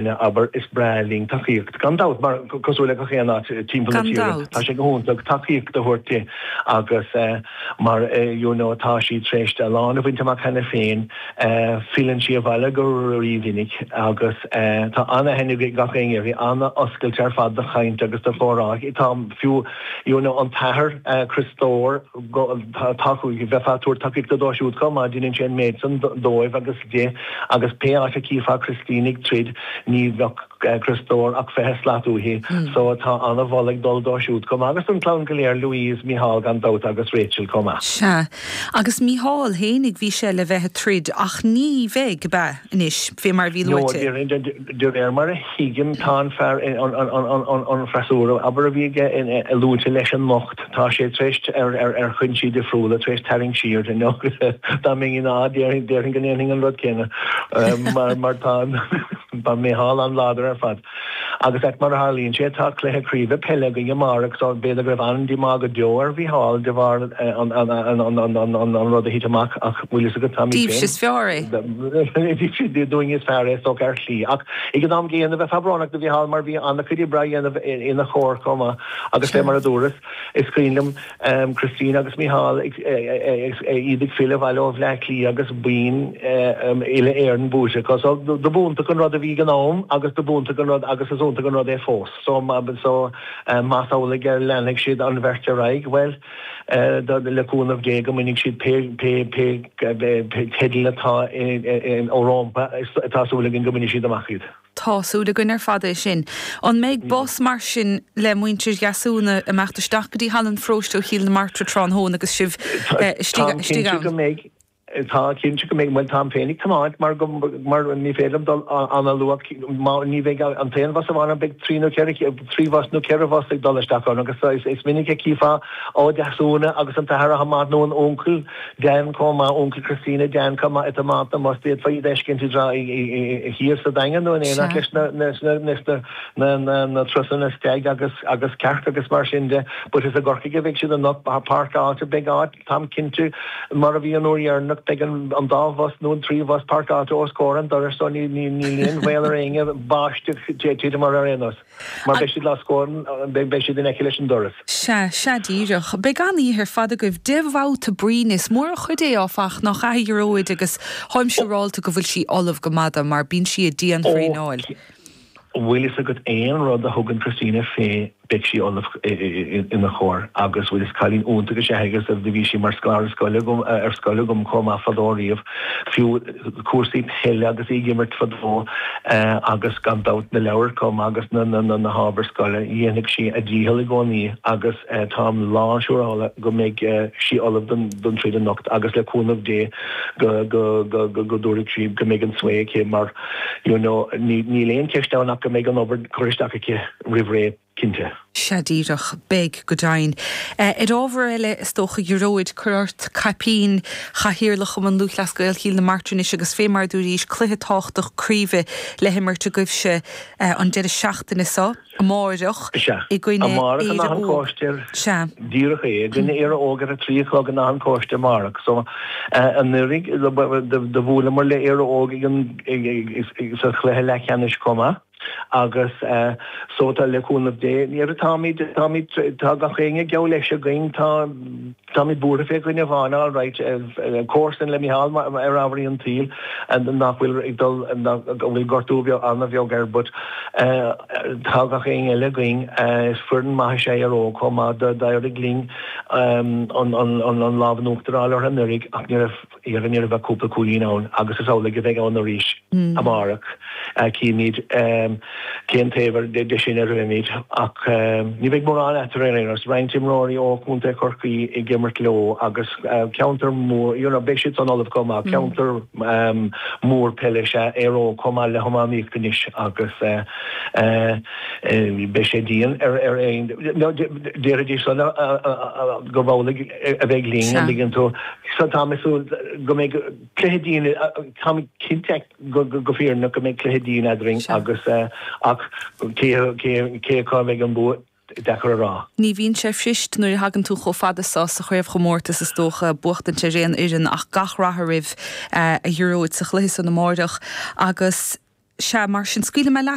Ina abair, Is breá linn tacaíocht, gan dabht, mar, cosúil le gach aon áit timpeall na tíre, tá sé go hiontach tacaíocht a thabhairt di agus mar you know tá sí tar éis a lán a bhaint amach cheana féin. Filleann sí abhaile go rímhinic agus tá ana-aithne ag gach éinne uirthi, ana-oscailte ar fad do chaint agus do chomhrá. Tá fiú you know an t-athair Criostóir, tá, bheifeá ag tabhairt tacaíochta dó siúd chomh maith, deineann sé an méid san dóibh agus. di, agus pé áit a tchífeá Christina ag troid ní bheadh Criostóir ach fiche slat uaithi, so tá ana-mholadh ag dul dó siúd chomh maith agus don chlann go léir, Louise, Micheál gan dabht agus Rachel chomh maith. Sea. Agus Micheál fhéinig bhí sé le bheith ag troid ach ní bheidh, ab ea? Anois, fé mar a bhí luaite. No, de réir mar a thuigim tá an fear, an freasúra, abair, a bhí aige luaite leis anocht. Tá sé tar éis, ar chúinsí difriúla, tar éis tarraingt siar. Dá mbeinn ina, déarfainn go ndéanfainn an rud céanna mar tá an Mícheál an-láidir ar fad. Agus mar a tharlaíonn sé, tá cluiche craoibhe peile againn amárach so b'fhéidir go raibh an-díomá go deo ar Mhícheál de bharr an rud a thit amach ach bhfuil fhios agat, tá, dúinne is fearr é so ar shlí ach ag an am gcéanna bheifeá brónach do Mhícheál mar bhí an-chuid oibre á dhéanamh ina chomhair chomh maith. Agus fé mar a dúras, is cuimhin liom Christina agus Micheál ag, iad ag filleadh abhaile ó Bhleá Cliath agus boinn Uile-Éireann buaite acu. So, dob iontach an rud a bhí ag an am agus dob iontach an rud agus is iontach an rud é fós. So, so, más amhlaidh go leanfaidh siad an bheirt ar aghaidh, bhuel, le cúnamh Dé go mbainfidh siad pé, pé, pé, pé teidil atá rompu, tá súil againn go mbainfidh siad amach iad. Tá súil againn ar fad é sin. An mbeidh bus mar sin le muintir Dheasúna ag imeacht isteach go dtí Halla an Pharóiste ó Chill na Martra tráthnóna agus sibh istigh ann? Táim cinnte go mbeidh, bhuel táim féin ag tiomáint mar go, mar ní féidir liom dul an-luath, ní bheidh an t-aon bhus amháin ann, beidh trí nó ceithre, trí bhus nó ceithre bhus ag dul isteach ann agus is minic a chífeá Ó Deasúna agus an t-athair chomh maith nó an uncail Dan chomh maith, uncail Christina, Dan chomh maith ag tiomáint na mbus d'fhéadfaí iad a fheiscint tráth thiar sa Daingean nó in éineacht leis na na na na turasanna stag agus agus cearc agus mar sin de but is i gCorcaigh a bheidh siad anocht beidh páirceáilte beidh áit táim cinnte mar a bhí an uair dheireanach beidh an an dá bhus nó an trí bhus páirceáilte os comhair an dorais so níl níl níl aon bhaol ar éinne báisteach titim air ar aon nós Mar beidh siad os comhair, beidh siad in aice leis an doras. Sea, sea díreach. Beidh an-oíche ar fad agaibh de bhabhta bruíne. Is mór an chuid é, áfach, nach ea, a Ghearóid, agus táim siúráilte go bhfuil sí ullamh go maith dó, mar bíonn sí ag dianthraenáil. An bhfuil fhios agat aon rud a thugann Christina fé beidh sí ullamh ina chomhair agus bhuel is cailín iontach is ea í agus do bhí sí mar scoláire scoile agam, ar scoil agam chomh maith fadó riamh, fiú. cúrsaí peile agus í ag imirt fadó agus gan dabht na leabhair chomh maith agus na hábhair scoile. Dhéanfadh sí a dícheall i gcónaí agus táim lán siúrála go mbeidh sí ullamh don troid anocht agus le cúnamh Dé go dtabharfaidh sí, go mbeidh an svae aici mar you know níl aon cheist ann ach go mbeidh an obair curtha isteach aici roimh ré. cinnte. Sea, díreach. Beidh, go deimhin. Ar ábhar eile, is dócha, a Ghearóid cuir ort caipín chathaoirleach Chumann Lúthchleas Gael Chill na Martra anois agus fé mar a dúraís, cluiche tábhachtach craoibhe le himirt agaibhse an deireadh seachtaine so, amáireach, Sea. i gcoinne Amárach in Áth an Chóiste. Sea. Díreach é. I gcoinne Éire Óg ar a trí a chlog in Áth an Chóiste amárach. So, anuiridh, do bhuaileamair le Éire Óg ag an, sa chluiche leathcheannais comh maith. Agus so, tá, le cúnamh Dé, ní raibh, táimid, táimid, tá gach éinne geall leis againn, tá, táimid buartha fé dhuine amháin, alright, comharsan le Micheál ar ábharaí an tsaoil nach bhfuil ag dul, go bhfuil gortú bheag, an-bheag air but tá gach éinne eile againn, is foireann maith is ea Éire Óg chomh maith, d'éirigh linn an, an, an, an lámh in uachtar a fháil orthu anuraidh ach ní raibh. Ní raibh ach cúpla cúilín ann agus is amhlaidh a bheidh ann arís amárach. Cífimid cén taobh de sin a raghaimid ach ní bheidh mórán eatarthu ar aon nós. Roinnt imreoirí ó chontae Chorcaí ag imirt leo agus ceantar mór, you know, beidh siad san ullamh chomh maith. Ceantar mór peile is ea Éire Óg chomh maith le hiománaíocht anois agus beidh sé dian ar aon, déarfaidís san, gurb amhlaidh. a bheidh linn, a ligeann tú. So táim ag súil go mbeidh cluiche dian, táimid cinnte go fírinneach go mbeidh cluiche dian eadrainn agus ach cé cé cá bheidh an bua deacair a rá. Ní bhíonn sé fuirist nuair a thagann tú chomh fada so sa chraobhchomórtas is dócha, buachtaint ar aon fhoireann ach gach rath oraibh a Ghearóid sa chluiche san amáireach agus sea mar sin scaoilfidh mé leat.